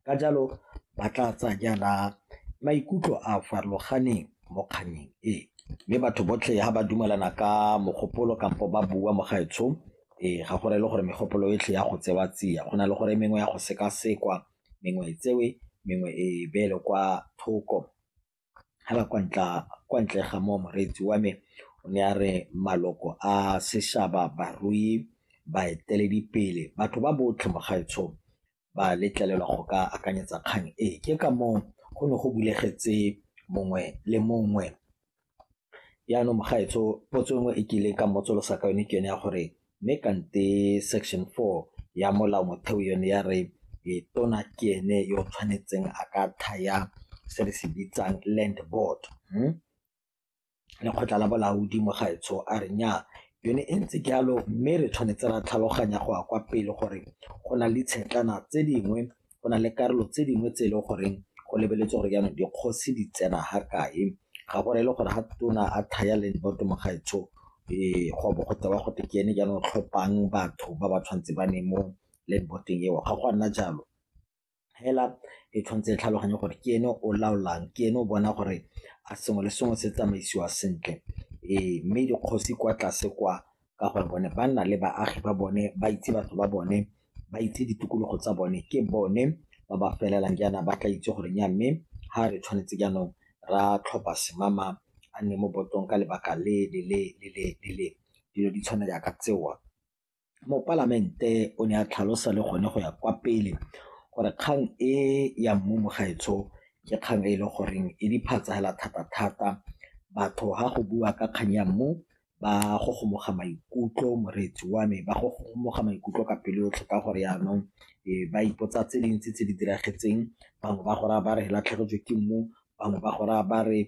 ka jalo ba tla tsaya jaana maikutlo a a farologaneng mo kgannyeng e. Mme batho botlhe ha ba dumelana ka mogopolo kampo ba bua mo gaetshong ee ga go rele gore megopolo yotlhe ya go tsewa tsia go na le gore mengwe ya go sekasekwa mengwe e tsewe mengwe e beelwe kwa thoko. fela kwa ntle ga moo moreetsi wa me o ne a re maloko a seshaba, barui, baeteledipele, batho ba botlhe mo gaetsho ba letlelelwa go ka akanyetsa kgang e. Ke ka moo go ne go bulegetse mongwe le mongwe Jaanong mogaetsho potso nngwe e ke ileng ka mmotsolosa ka yone ke yone ya gore mme kante section four ya molao motheo yone ya re tona ke ene yo o tshwanetseng a ka thaya se re se bitsang land board hmm? lekgotla la bolaodi mogaetsho a re nya yone e ntse jalo mme re tshwanetse ra tlhaloganya go ya kwa pele gore go na le tshetlana tse dingwe go na le karolo tse dingwe tse e leng goreng go lebeletse gore jaanong dikgosi di tsena ga kae ga go rele gore ga tona a thaya leng boto mogaetsho ee go bo go tewa go te ke ene jaanong tlhophang batho ba ba tshwanetse ba ne mo leng boteng eo ga go a nna jalo fela e tshwanetse e tlhaloganye gore ke ene o laolang ke ene o bona gore a sengwe le sengwe se tsamaisiwa sentle ee mme dikgosi kwa tlase kwa ka gore bone ba nna le baagi ba bone ba itse batho ba bone ba itse ditokologo tsa bone ke bone ba ba felelang jaana ba tla itse gore nya mme ga re tshwanetse jaanong ra tlhopha semama a nne mo botong ka lebaka le le le le le le le dilo di tshwana jaaka tsewa mopalamente o ne a tlhalosa le gone go ya kwa pele gore kgang e ya mmu mogaetsho ke kgang e e le goreng e diphatsa fela thata-thata batho ga go bua ka kgang ya mmu ba gogomoga maikutlo moreetsi wa me ba gogomoga maikutlo ka pelo yotlhe ka gore yanong ba ipotsa tse dintsi tse di diragetseng bangwe ba gore ba re latlhegetswe ke mmu bangwe ba gore ba re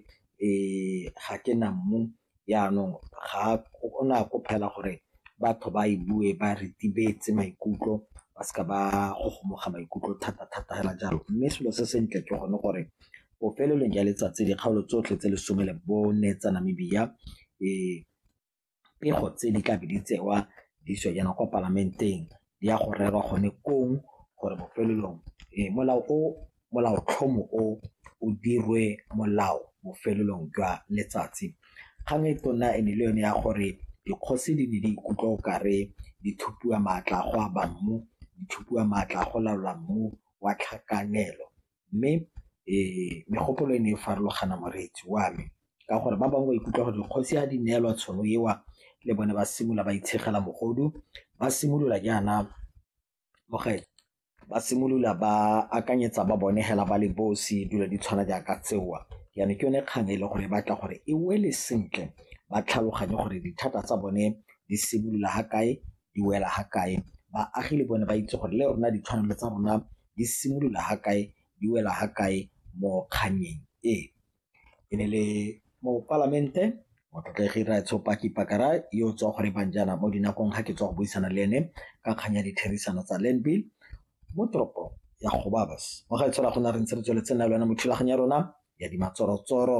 ga ke na mmu yanong ga o ne a ko phela gore batho ba e bue ba retibetse maikutlo ba seka ba gogomoga maikutlo thata-thata fela jalo mme selo se sentle ke gone gore bofelelong ya letsatsi dikgaolo tsotlhe tse lesome le bone tsa Namibia e pego tse di tlabe di tsewa di iswa jaana kwa palamenteng di ya go rerwa gone kong gore bofelelong e molao o molaotlhomo o o dirwe molao bofelelong jwa letsatsi kgang e tona e ne le yone ya gore dikgosi di ne di ikutlwa o kare di thupiwa maatla go aba mmu di thupiwa maatla go laola mmu wa tlhakanelo Mme megopolo e ne e farologana moreetsi wa me ka gore ba bangwe ba ikutlwa gore dikgosi ha di neelwa tšhono eo le bone ba simolola ba itshegela mogodu, ba simolola jaana ba simolola ba akanyetsa ba bone fela ba le bosi dilo di tshwana jaaka tseo. Jaanong ke yone kgang e leng gore e batla gore e wele sentle ba tlhaloganye gore dithata tsa bone di simolola fa kae di wela fa kae, baagi le bone ba itse gore le rona ditshwanelo tsa rona di simolola ga kae di wela ga kae mo kgannyeng e. E ne le mopalamente motlotlegi Raetsho Paki Pakara yo o tswa go re bang jaana mo dinakong ga ke tswa go buisana le ene ka kgang ya ditherisano tsa land bill mo toropong ya Gobabis mo ga e tshola go na re ntse re tsweletse nna le wena mo thulaganyo ya rona ya dimatsorotsoro.